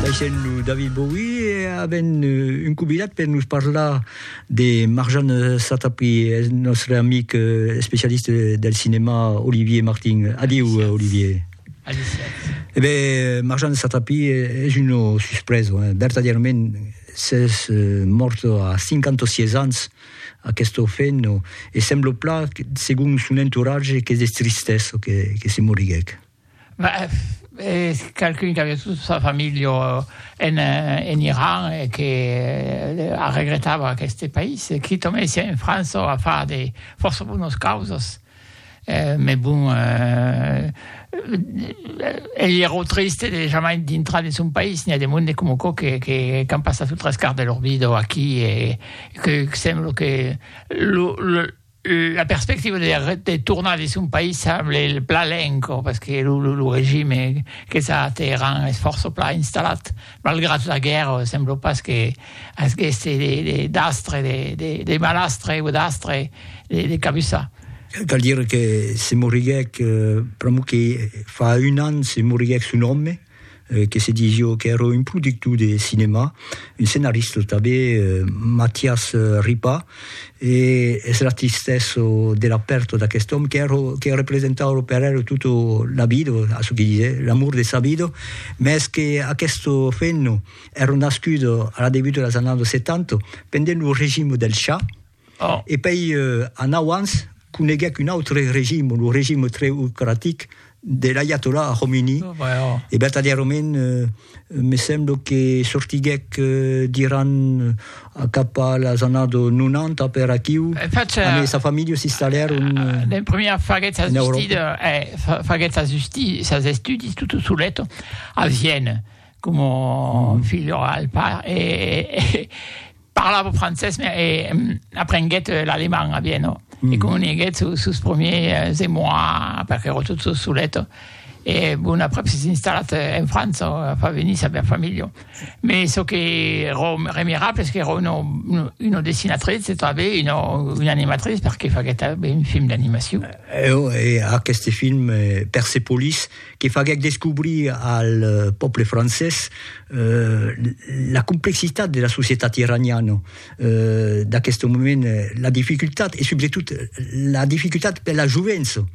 Baissèm lo David Bowie e avèm un convidat per nos parlar de Marjane Satrapi, eth nòstre amic especialista del cinèma Olivier Martin. Adiu, Olivier. Adiu, Sètz. E ben, Marjane Satrapi es una suspresa, hein, vertadièrament, s'es mòrta a 56 ans, aquesta femna, e sembla plan, segon son entoratge, qu'es de tristesa que se moriguèc. Es qualqu'un qu'aviá tota sa familha en Iran e que arregretava aqueste país. Qui tornèsse en França a far de fòrça bonas causas. Mès bon, ei ero triste de jamai dintrar de son país. N'i a de monde coma aquò qu'an passat lo tres quart de lor vida aquí e que sembla que La perspectiva de tornar dins son país semble plan lenca, pas que lo regime qu'es a Teheran es fòrça plan installat, malgrat la guèrra sembla pas que asgèsse d'astre, de malastre o d'astre de cabussar. Cal dire que se moriguèc pr'amor que fa un an se moriguèc son òme, que se dis jo qu'èra un productor de cinèma, un scenarista tanben, Matias Ripa, e es la tristesa de la pèrta d'aquest òme qu'èra, que representava per el tota la vida, a çò que disè, l'amor de sa vida, mès qu'aquesta femna èra nascuda a la debut de las annadas 70, pendent lo regime del Shah, E pei anau ans coneguec un autre regime, lo regime treocratic de l'aiatollah Khomeini, e vertadièrament me semblo que sortiguec d'Iran cap a las annadas 90 per aquiu, amb sa familha s'installèron en Euròpa. Faguèt sas estudis tot solet a Vienne, coma filho al pair, e Parlava francés, mais eh, aprenguèt l'alemand a Viena, mm. e comuniguèt sus, sus premiers émois, perque era tot sos solet, e bon après s'es installat en França, a fa venir sa bèra familha. Mais çò que era remirable es qu'era una, una dessinatrice, e tanben una, una animatrice, perque faguèt ben un film d'animacion. Eh, oh, e aquest film, eh, Persepolis, que faguèc descobrir al pòble francés la complexitat de la societat iraniana d'aqueste moment, la dificultat e subretot la dificultat per la jovença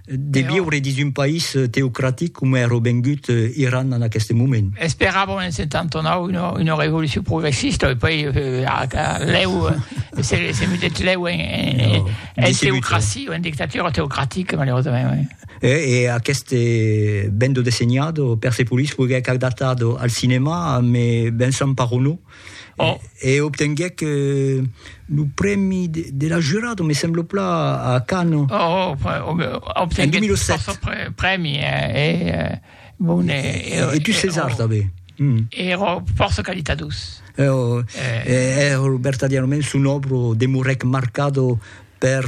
de viure dins un país teocratic coma èra vengut Iran en aqueste moment. Esperàvem en 79 una revolucion progressista e puèi lèu se mudèt lèu en teocracia o en dictatura teocratica malaurosament. E aqueste bendo dessenhado Persepolis foguèc adaptado al cinèma me Vincent Parronneau oh. e obtenguèc lo prèmi de la jurado, me semblo pla, a Cannes. Oh, oh obtenguèc en 2007. prèmi e, e, bon, e, e, e, e tu César, també. Mm. Ero força qualitadus. Ero, eh. ero vertadièrament son obro demorèc marcado per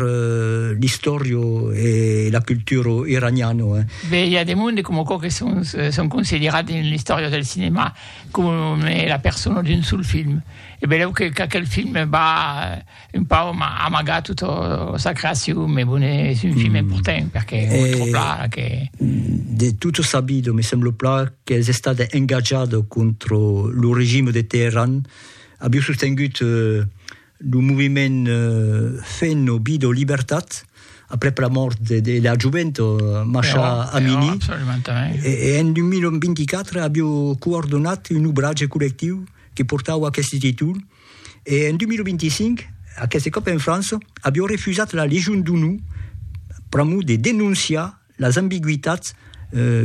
l'istòria e la cultura iraniana. Be, i a de monde coma quò que son, son considerat dins l'istòria del cinèma coma la persona d'un sol film. E belèu que qu'aquel film va un pauc amagar tota sa creacion, me bon, es un film important perque o tròp la que... De tota sa vida, me sembla pla qu'es estat engatjat contra lo regime de Teheran, aviá sostengut Lo moviment Fenn o Bid o Libertat, aprèp la mòrt de la jovent Masha Amini, e en 2024 avió coordonat un obratge collectiu que portava aqueste títol, e en 2025, aqueste còp en França, avió refusat la Legion d'Onor pr'amor de denonciar Las ambigüitats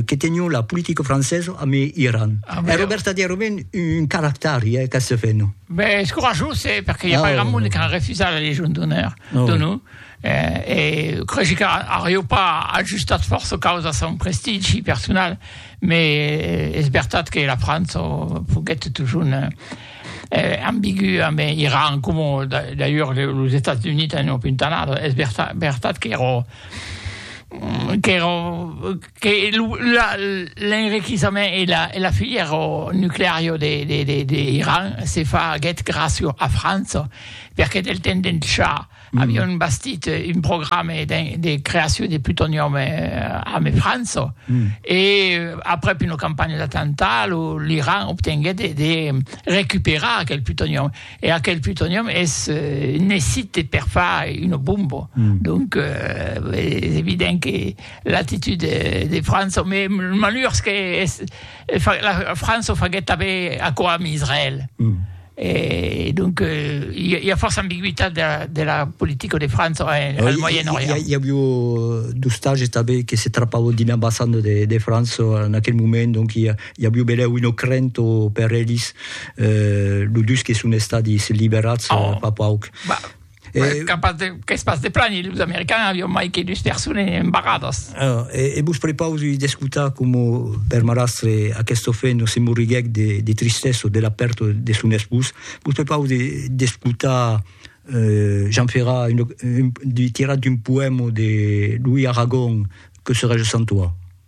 que tenion la politica francesa amb Iran. Ah, Era vero. vertadèrament un caractari, eh, qu'asse fè, non? Ben, es corajós, eh, perque i a Ah, pas grand monde qui a refusat la Légion d'honneur Ah, de oui. nous. Eh, e cregi que aurieu pas ajustat fòrça causa a son prestigi personal, mais es vertat que la França foguèt totjorn eh, ambigu amb Iran, coma da- d'ailleurs le- los Estats Units an opintanat. Es verta- vertat qu'èra l'enriquissament e la filière nuclearia d'Iran se faguèt gràcia a França, perque del temps d'en Shà avián bastit un programa de creacion de plutonium amb França, e aprèp una campanha d'atemptat l'Iran obtenguèt de recuperar aquel plutonium. E aquel plutonium es necite per far una bomba. Mm. Donc, euh, es evident que l'actitud de, de França, mais malheurs que es, la França faguet també aquò amb Israël. Mm. Et donc, il euh, y, a force ambiguïté de la, de la politique de France en, hein, oui, Moyen-Orient. Il y, a eu euh, deux stages qui se trappaient d'une ambassade de, de France en euh, aquel moment, donc il y a, I a Biubelèu un ocrent o per elis, lo dus que son estadis liberats fa pauc. Qu'es pas de plani, los americans avion mai que dus persones embarradas. E vos prepausi d'escotar coma per marrastre aqueste ofent se morriguèc de tristessa de la pèrta de son espós. Vos prepausi d'escotar Jean Ferrat tirat d'un poèma de Louis Aragon que serai je sans toi.